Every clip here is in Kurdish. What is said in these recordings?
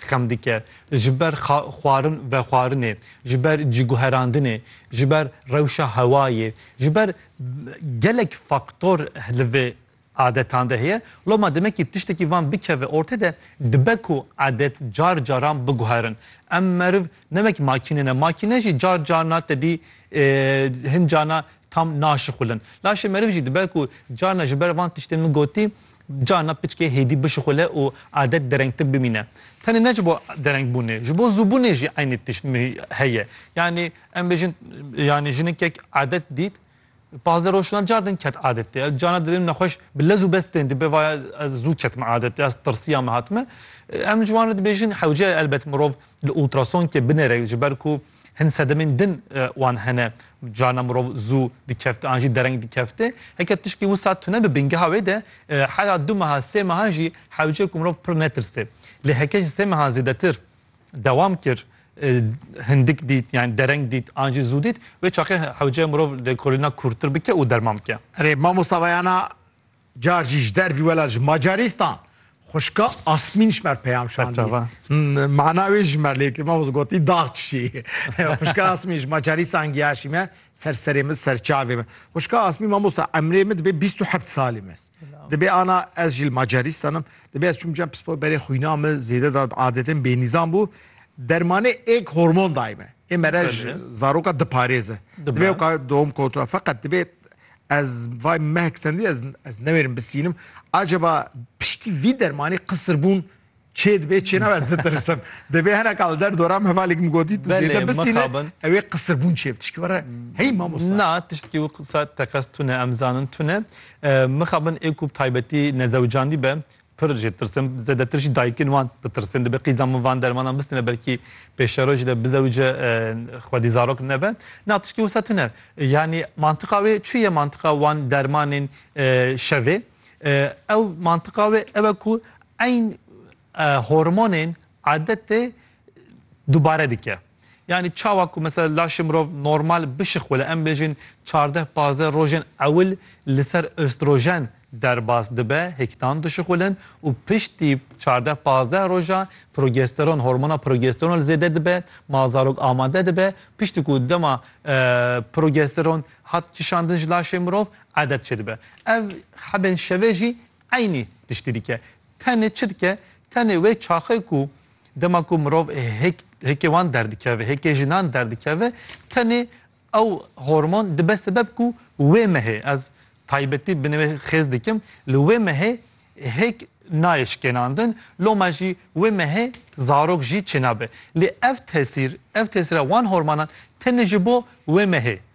xem dike, ji ber xwarin vexwarinê, ji ber ciguherandinê, ji ber rewşa hewayê, ji ber gelek faktor li vê adetan de heye. Loma demekî tiştekî van bikeve ortê de dibe ku adet car caran biguherin. Em meriv ne wek makîne ne, makîne jî car carna tedî hin carna tam naşixulin. Laşê meriv jî dibe ku carna ji ber van tiştên min gotî Carna piçkê hêdî bişixule û adet derengtir bimîne. Tenê ne ji bo derengbûnê, ji bo zûbûnê jî eynî tişt heye. Yanî em bêjin yanî jinikek adet dît, pazdeh roj şûna car din ket adetê. Ew carna dilê min nexweş bi lez û bez tên dibe vaya ez zû ketime adetê, ez tirsiya me hatime. Em ji wan re dibêjin hewce ye elbet mirov li ultrasonkê binêre ji ber ku Hin sedemên din wan hene. Carna mirov zû dikefti an jî dereng dikefti. Heke tişkî wisa tune bi bingeha wê de hera du meha sê mehan jî hewce ku mirov pir netirsê. Lê heke ji sê mehan zêdetir dewam kir hindik dît yan dereng dît an jî zû dît wê çaxê hewce mirov lêkolîna kûrtir bike û derman bike. Erê mamosta Veyana Car jî ji dervî wela ji Macarîstan xuşka Asmîn ji mer peyam şandî. Mana wê ji mer lê kir me gotî dax çişî. Xuşka Asmîn ji Macarîstan giyaşî me ser serê min ser çavê min. Xuşka Asmîn mamosta emrê min dibê bîst û heft salî me. Dibê ana ez jî li Macarîstan im. Dibê ez çûm cem pispor berê xwîna min zêde da adetên bênîzan bû. Dermanê êk hormon dayî me. Ê mere ji zaroka diparêze. Dibê weka dom kontrol feqet dibê Ez vay mehek stendî ez ez newêrim bisînim. Acaba piştî vî dermanî qisirbûn çê dibê çê nabe ez ditirsim. Divê hineka li der doram hevalêk min gotî tu zêde bisîne ew ê qisirbûn çê bi tişkî were hey mamosta. Na tiştekî wê qisa teqez tune em zanin tune mixabin ê ku bi taybetî nezewicandî be Pir jê tirsim, zêdetir jî dayikên wan ditirsin. Dibe qîza min van dermanan bistîne belkî pêşero jî de bizewije xwedî zarok nebe. Na tiştî wisa tune. Yanî mantiqa wê çi ye mantiqa wan dermanên şevê? Ew mantiqa wê ew e ku eyn hormonên Adetê dubare dike. Yanî çawa ku mesela laşê mirov normal bişixwile em bêjin çardeh pazdeh rojên ewil li ser östrojen derbas dibe hêktan dişixwilin û piştî çardeh pazdeh rojan progesteron hormona progesteron li zêde dibe ma zarok amade dibe piştî ku dema progesteron hat kişandin ji laşê mirov adet çêdibe. Ev hebên şevê jî Eynî tiştî dike. Tenê çi dike? Tenê wê çaxê ku dema ku mirov hêk hêkê wan derdikeve, hêkê jinan derdikeve, tenê ew hormon dibe sebeb ku wê mehê, ez taybetî binê wê xêz dikim, li wê mehê hêk nayê şikênandin, loma jî wê mehê zarok jî çênabe. Lê ev tesîr, ev tesîra wan hormanan tenê ji bo wê mehê.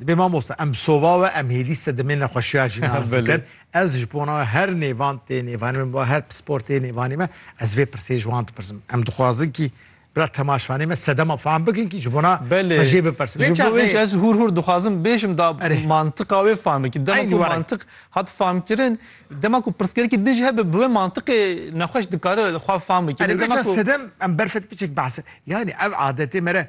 Dibê mamoste em bi sova we em hêlî sedemê nexweşiya jî nas bikin. Ez ji bona we her nêvan tê nêvanê me bo her pispor tê nêvanê me ez vê pirsê ji wan dipirsim. Em dixwazin kî bira temaşvanê me sedema fehm bikin kî ji bona xwe jê bipirsin. Ji bo wê jî ez hûr hûr dixwazim bêjim da mantiqa wê fehm bikin. Dema ku mantiq hat fehmkirin dema ku pirsgirêkî din jî hebe bi wê mantiqê nexweş dikare xwe fehm bike. Dema ku sedem em berfet piçek behse yanî ev adetê me re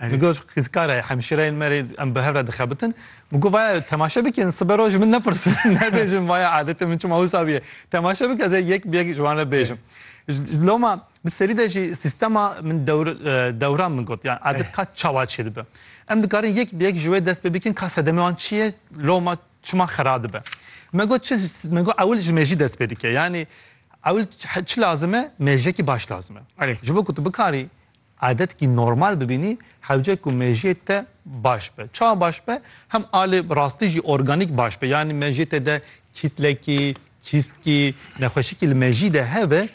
Min got, Xizkar e, hemşîreyên me rê em bi hev re dixebitin. Min got, Vaya temaşe bikin, sibe roj min nepirsin, nebêjin vaya adetê min çima wisa bûye. Temaşe bik ez ê yek bi yek ji wan re bêjim. Ji loma bi serî de jî sîstema min dewr dewran min got, yan adet ka çawa çê dibe. Em dikarin yek bi yek ji wê dest pê bikin ka sedemê wan çi ye, loma çima xera dibe. Me got, çi min got, ewil ji mêjî dest pê dike. Yanî ewil çi lazim e, mêjekî baş lazim e. Ji bo ku tu bikarî Adetî normal bibînî hewce ku mejiyê te baş be. Çawa baş be? Hem a li rastî jî organîk baş be. Yanî mejiyê te de kîtlekî, kîstkî, nexweşikî li mejiyî de hebe